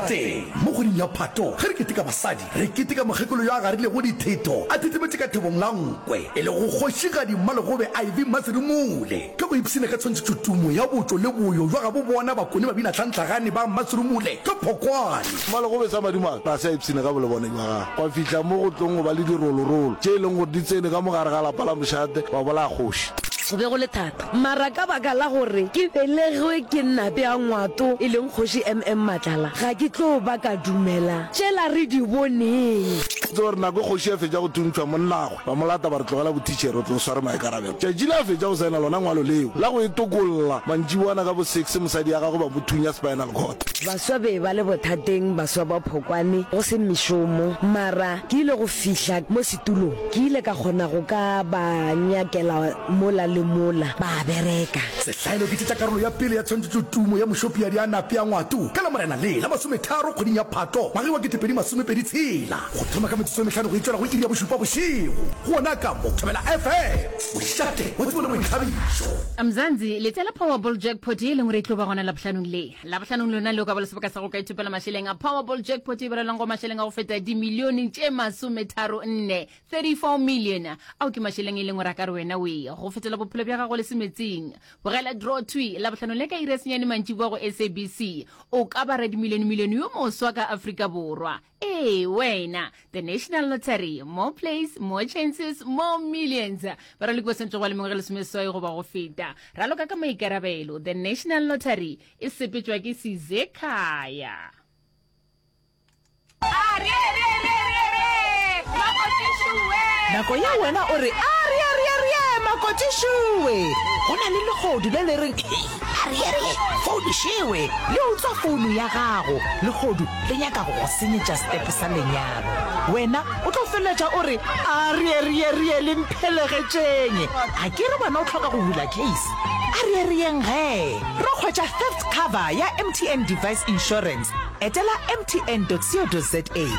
Teng mo kgweding ya Phato, ge re keteka basadi, re keteka mokgekolo yo a garilego ditheto a thethemetše ka thebong la nkwe, e lego Kgošigadi Mmalegobe Ivy Mmaserumule. Ka go ipshina ka tshwantšhetšo tumo ya botšo le boyo bja gabo bona bakone babinahlantlhagane ba Mmaserumule ka Phokwane. Mmalegobe sa madimabe ga se a ipshina ka bolebone bja gagwe, gwa fihla mo go tlong go ba le dirolorolo tše e leng gore di tsene ka mo gare ga lapa la mošate wa bolaya kgoši. Go be go le thata Mara ka baka la gore ke belegwe ke Nape a Ngwato e leng Kgoši MM Matlala, ga ke tlo ba ka dumela tšela re di boneng. Ke tseba gore nako e kgoši a fetša go thuntšhwa, monnagwe ba mo lata ba re, Tlogela bothitšhere, o tlo sware maikarabelo. Tšatši le a fetša go saena lona ngwalo leo la go e tokolla, mantšiboana ka bo six mosadi ya gagwe ba mo thunya spinal cord. Baswa be ba le bothateng, baswa ba phokwane, go se mešomo. Mara ke ile go fihla mo. Tulo, Ke ile ka kgona go ka ba nyakela mola le mola, ba a bereka. Sehlaelo, Ke tšetša karolo ya pele ya tshwantšhetšo tumo ya mošopiadi a nape a ngwato ka Lamorena le la masometharo kgweding ya Phato ngwageng wa ketepedi masomepedi tshela, go thoma ka metsotso e mehlano go itšwela go iri ya bošupa bošego gona ka mo Thobela FM. Mošate wa Tumo le Boithabišo. Mzansi, Letša la Powerball Jackpot ye e leng gore e tlo ba gona Labohlanong le. labohlanong lona leo ka ba le sebaka sa go ka ithopela mašeleng a powerball jackpot e berelwang go mašeleng a go feta dimilione tše masometharo nne 34 million ao ke mašeleng e leng gore a ka re wena oe go fetela bophelo bja gago le semetseng bogela draw twi labohlanong le ka ire senyane mantši boa go sabc o ka bara dimilione milione yo moswa ka afrika borwa Ee, wena. The National Lottery. More plays, more chances, more millions. Baraloki ba swanetše go ba le mengwaga lesomeswai goba go feta. Raloka ka maikarabelo. The National Lottery e sepetšwa ke Sizekhaya. nako ye wena o re a re a re a re ye makotišue go na le legodu le le reng Arielle, founu šewe, le utswa founu ya gago. Legodu le nyaka go go senyetša stepe sa lenyalo. Wena o tlo feleletša o re, Arierierie le mphelegetšeng. A ke re wena o tlhoka go bula case? Arierieng ge re hwetša theft cover ya MTN Device Insurance, etela mtn.co.za.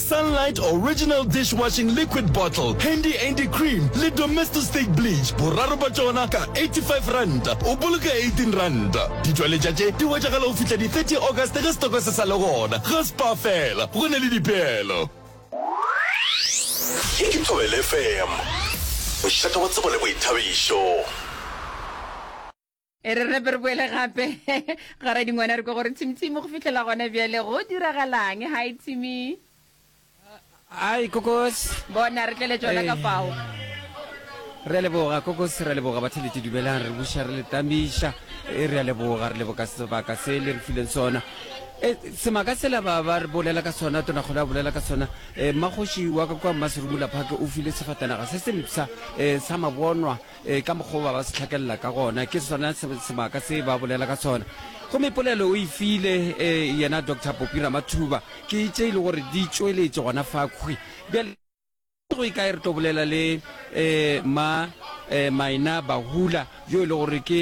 Sunlight Original Dishwashing Liquid Bottle, Handy Andy Cream le Domestostate Bleach, boraro bja tšona ka R85, o boloka R18. Ditšweletša tše di hwetšagala go fihla di 30 August ge setoko se sa le gona. Ga Spar fela, go na le dipeelo. Ye ke Thobela FM, mošate wa tsebo le boithabišo. e re repe re boele gape ga ra dingwana re ko gore tshimtshimo go fitlhela gone bjale go diragalang ga e tshimi ai kokos bona re tlele tsona ka fao re leboga kokos re leboga ba thelete dumelang re buša re letamiša e re a leboga re leboga sebaka se le re fileng sona Eh, semaka sela ba ba re bolela ka sona tona kgole a bolela ka sona um magoši wa ka kwa mmaserumula phake o file sefatanaga se sempsa um eh, sa mabonwa Ee, ka mokgwa wo ba ba se hlakelela ka gona, ke sona se- sebaka se ba bolela ka sona. Gomme polelo o e file eh, yena Doctor Popi Ramathuba, ke tše e le gore di tšweletše gona fa khwi. Bjale go e kae re tlo bolela le eh, ma eh, Maina Bahula yo e le gore ke